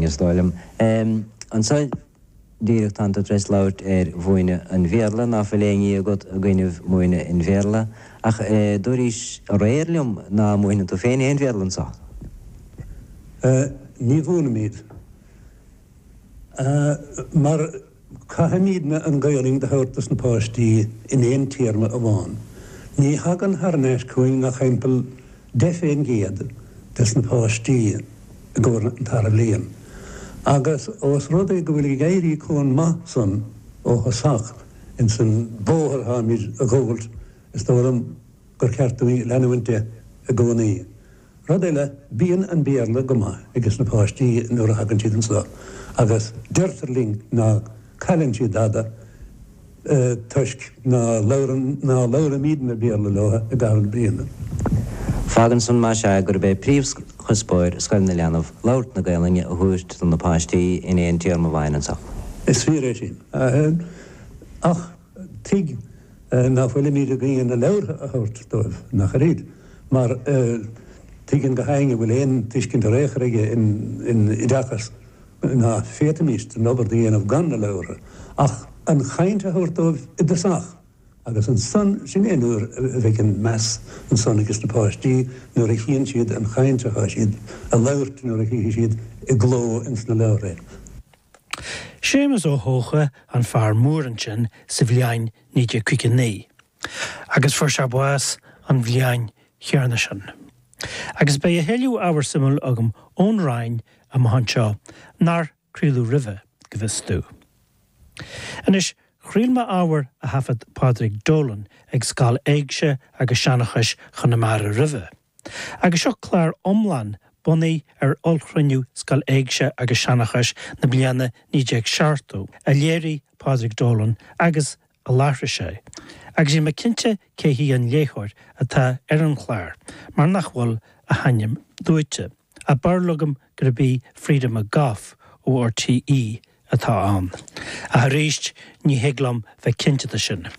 Is dóigh liom, ansa díreach, tánn tú tar éis labhairt ar mhúineadh an Bhéarla, ná fuil aon ní agat i gcoinnibh múineadh an Bhéarla, ach dúraís aréir liom ná múineann tú féin aon Bhéarla anso? Sea, ní mhúinimid, mar. Caithfimidne an Ghaelainn do thabhairt dos na páistí in aon téarma amháin. Ní thagann thar n-ais chugainn ach thimpeall deich fén gcéad des na páistí i gcomhair an tarna bhliain. Agus ós rud é go bhfuil ag éirí comh maith san ó thosach ins an bóthar atháimid ag gabháilt, is dóigh liom gur ceart dúinn leanúint de i gcónaí. Rud eile, bíonn an Béarla go maith ages na páistí nuair a thagann siad anso agus deirtear linn ná cailleann siad dada toisc ná labhrann, ná labhraímidne Béarla leo i gcaitheamh na bliana. Fágann san, más ea, gurb é príomhchuspóir scoil na leanbh labhairt na Gaelainne a thabhairt do na páistí in aon téarma amháin anso. Is fíor é sin. Ach. Tuig ná fuilimíd ag diúltú na leabhartha a thabhairt dóibh, nach oiread, mar tuigeann gach éinne a bhfuil aon tuiscint ar aon chor aige in oideachas ná féadfaimíst an obair do dhéanamh gan na leabhartha, ach an chaint a thabhairt dóibh i dtosach. Agus ansan, sin é nuair a bheidh an meas ansan ages na páistí, nuair a chíonn siad an chaint atá siad a labhairt nuair a chífidh siad i gcló ins na leabhartha é. Séamus Ó hEocha an Fear Mór ansin sa bhliain 1959 agus fuair sé bás an bhliain chéanna sin. Agus beidh a thuilleadh ábhar suimiúil agam ón Rinn amach anseo nár craoladh roimhe, go bhfios domh. Anois, chraol mé ábhar a thaifead Pádraig Dolan ag Scoil Éigse agus Seanchais Chonamara roimhe. Agus seo clár iomlán bunaithe ar ollchruinniú Scoil Éigse agus Seanchais na bliana 1970, a léirigh Pádraig Dolan agus a láithrigh sé, agus níl mé cinnte cé hí an léitheoir atá ar an chlár mar nach bhfuil a hainm luaite, ach barúil agam gurb í Frieda McGough ó RTÉ atá ann, ach arís ní thig liom bheith cinnte de sin.